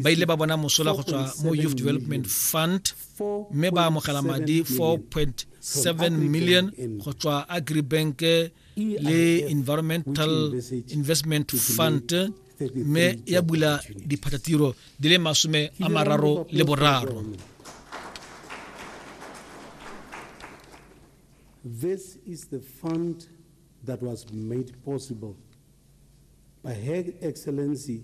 ba ile ba bona mosola go tswa mo youth development fund mme ba amogela madi 4.7 million go tswa agribank e le environmental investment fund mme ya bula diphatatiro di le masome a mararo le boraro This is the fund that was made possible by Her Excellency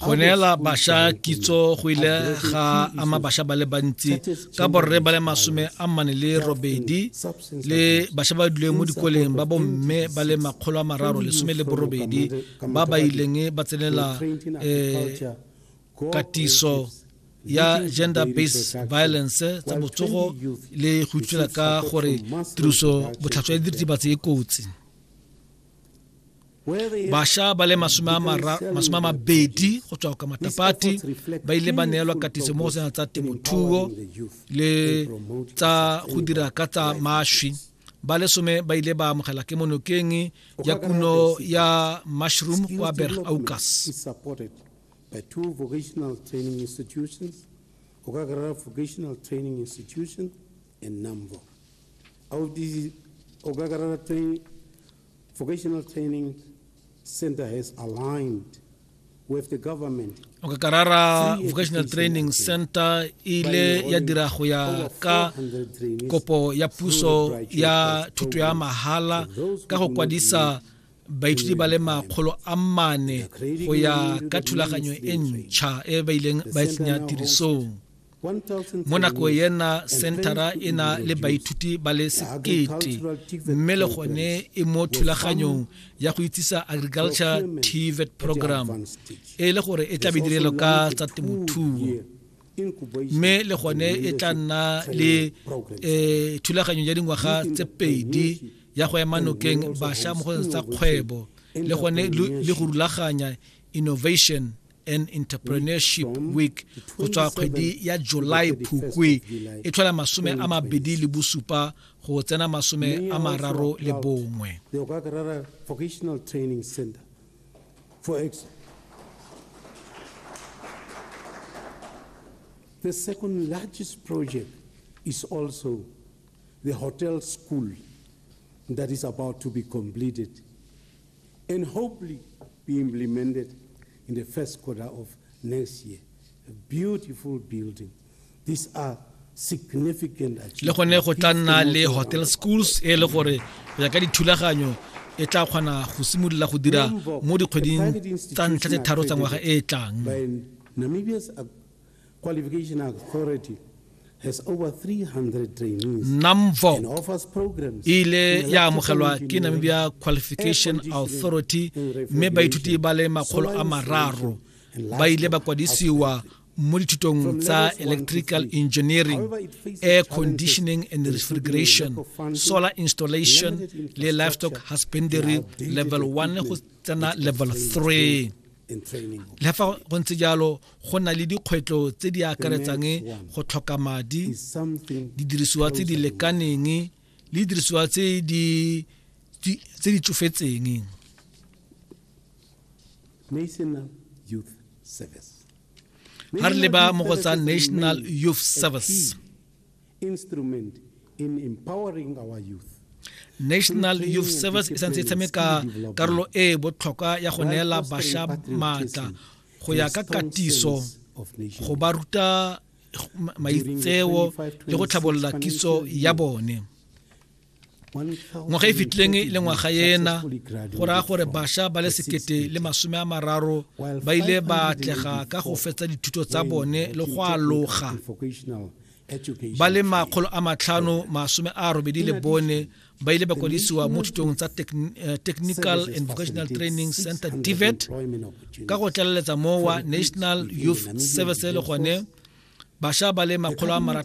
go neela basha kitso go ile ga ama basha ba le bantsi ka borre ba le masome a mmane le robedi le basha ba duleng mo dikoleng ba bomme ba le makgolo a mararo lesome le borobedi ba ba ileng ba tsenela um katiso ya gender based violence tsa botsogo le go itshwela ka gore tiriso botlhatswa ya diritibatsi e kotsi basha ba le masome a mabedi go tswa ka matapati ba ile ba neelwa katiso mo go sena tsa temothuo le tsa go dira ka tsa mašwi ba le some ba ile ba amogela ke monokeng ya kuno ya mushroom kwa berg aucas by two vocational training institutions, Okakarara Vocational Training Institution and NAMVO. of the Ogagara training, vocational training center has aligned with the government okakarara vocational training center e ile ya dira go ya ka kopo ya puso ya thuto ya mahala ka go kwadisa baithuti ba le makgolo a mane go ya ka thulaganyo e ntšha e ba ileng ba e tsenya tirisong mo nako ena centera e na le baithuti ba le sekete mme le gone e mo thulaganyong ya go itsisa agriculture tvet program e le gore e tla be direlo ka tsa temothuo mme le gone e tla nna le eh, thulaganyo ya dingwaga tse pedi ya go ema nokeng bašwa mo go tsa kgwebo le gone le go rulaganya innovation and entrepreneurship week go tswa kgwedi ya july phukwe e tlhola masome a mabedi le bosupa go tsena masome a mararo le bongwe The second largest project is also the hotel school that is about to be completed. and hopefully be implemented in the first quarter of next year. A beautiful building. These are significant achievements. Le gone go tla nna le hotel schools e le gore go ya ka dithulaganyo e tla kgona go simolola go dira mo dikgweding tsa ntlha tse tharo tsa ngwaga e e tlang. Qualification Authority NAMVOC e ile ya amogelwa ke Namibia Qualification Authority mme baithuti ba le makgolo a mararo ba ile ba kwadisiwa mo dithutong tsa electrical engineering air conditioning and refrigeration solar installation le livestock husbandry level 1 go tsena level 3 le fa go ntse jalo go na le dikgwetlho tse di akaretsang go tlhoka madi didirisiwa tse di lekaneng le didirisiwa tse di tse di tsofetseng ha re leba mo go tsa national youth service instrument in empowering our youth. National Youth Service e santse e tshameka karolo e e botlhokwa ya go neela basha maatla go ya ka katiso go ba ruta maitseo le go tlhabolola kitso ya bone. ngwaga e fitlhileng e le ngwaga ena go raya gore bašwa ba le sekete le masome a mararo ba ile ba atlega ka go fetsa dithuto tsa bone le go aloga ba le makgolo a matlhano masome a robedi le bone ba ile ba kwadisiwa mo thutong tsa eh, technical and vocational training center tivet ka go tlaleletsa mowa national youth service le gone bašwa ba le makgolo a